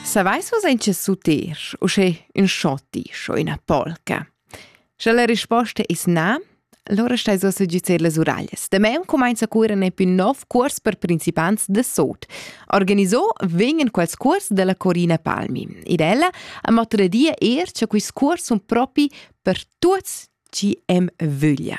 Savais vus en che suter, uschè ün schotti, scho üna polca? Sche la risposta es na, allora stai so süggiuzer las uraglias. Demeu cumainza a curer ne più nov cuors per principants de sot. Organisò vegnan quels cuors della Corina Palmi. Ed ella ha matradia er che quist cuors sun propi per tuots chi em vöglia.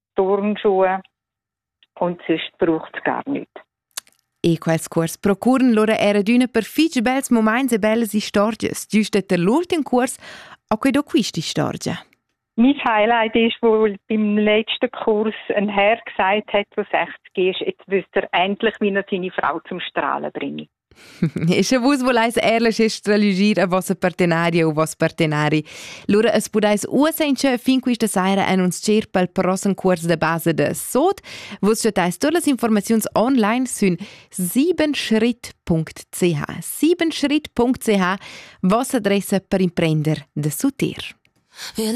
Turnschuhe und sonst braucht gar nichts. E quels cuors procuran lura era d'üna per fich bels momaints e bellas istorgias, giüst der l'ultim cuors a que do quist'istorgia. Mein Highlight ist wohl beim letzten Kurs ein Herr gesagt hat, der sagt, gehst, jetzt wisst ihr endlich, wie er seine Frau zum Strahlen bringe. E sche vus voleis ehrlich stralegir a vossa partenaria u vos partenari, lura es pudais uossa inchè fin quista saira en uns tschert pel prossem cuors de base de Sot. Vus chattais tur las informaziuns online sün siebenschritt.ch. siebenschritt.ch, vossa adressa per imprender de Suter. Wir